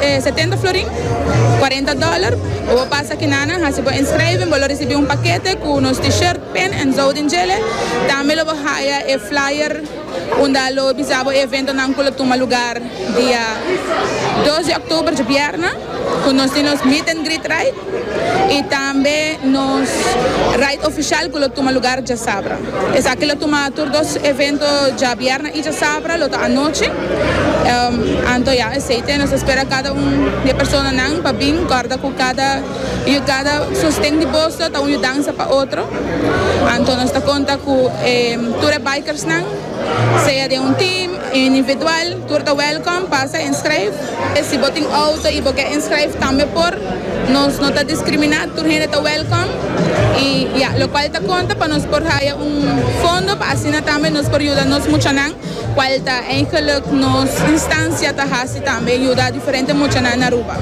E setenta florin, cuarenta dollar, bo por pasa Kinana haci bo inscraving, bo lo ricibi un paquete cu nos T-shirt, pen en zouding djele. Tambe lo bo haya e flyer unda lo bisa bo e eventonan cu lo tuma lugar dia dos di october djobierna cu nos tin nos meet and greet ride y tambe nos ride oficial cu lo tuma lugar djasabra. Esaki lo tuma tur dos evento djabièrnè i djasabra, lo ta anochi. Anto ya esei te nos ta spera kada un di e personanan pa bin kòrda ku kada yu kada sosten di boso ta un yu dansa pa otro. Anto nos ta konta ku e tur e bikersnan, sea den un team, individual, tur ta wèlkòm, pasa en skreef. Si bo tin auto y bo ke inscribe tambe por, nos no ta discrimina, tur hende ta welcom y ya, locual ta conta pa nos por haya un fondo pa asina tambe nos por yuda nos muchanan cual ta eigenlijk nos instancia ta haci tambe, yuda diferente muchanan na Aruba.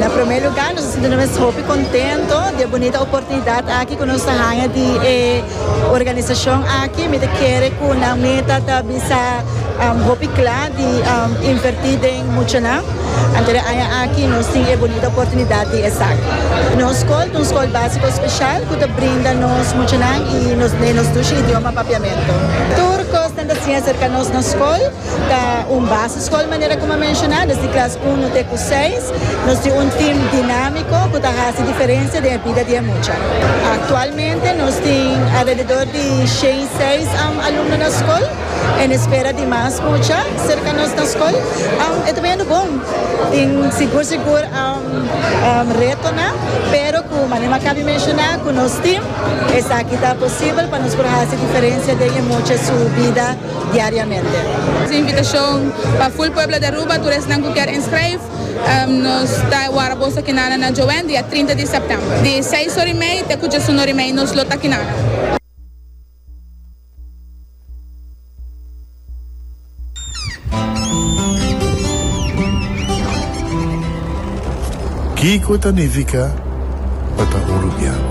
Na prome lugar nos ta sinti nos mes hopi contento di e bunita oportunidad aki cu nos ta haya di e. Organisacion aki mi ta kere cu nan meta ta bisa hopi cla di inverti den muchanan. Anto den aña aki nos tin e bonita oportunidad di esaki. Nos scol ta un scol basico special cu ta brinda nos muchanan y nos ne nos dushi idioma papiamento. Tur cos nan ta siña acerca nos na scol. Ta un baseskol manera ku mi a menshoná, nos di klas unu te ku seis. Nos tin un tim dinámiko ku ta hasi diferensia den e bida di e mucha. Aktualmente nos tin alrededor di shen i seis alumno na skol en espera di mas mucha serka nos na skol. E ta biendo bon. Tin sigur sigur retonan, pero ku manera mi a kabi menshoná ku nos tim esaki ta posibel pa nos por hasi diferensia den e mucha su bida. diariamente. Nos a invitashon pa ful pueblo di Aruba, tur esnan ku kier inskreif, nos ta wara boso akinana na Joen dia trinta di sèptèmber, di seis ora i mei te ku djesun ora i mei. Nos lo ta akinana. Kiko ta nifiká pa ta Urubiano?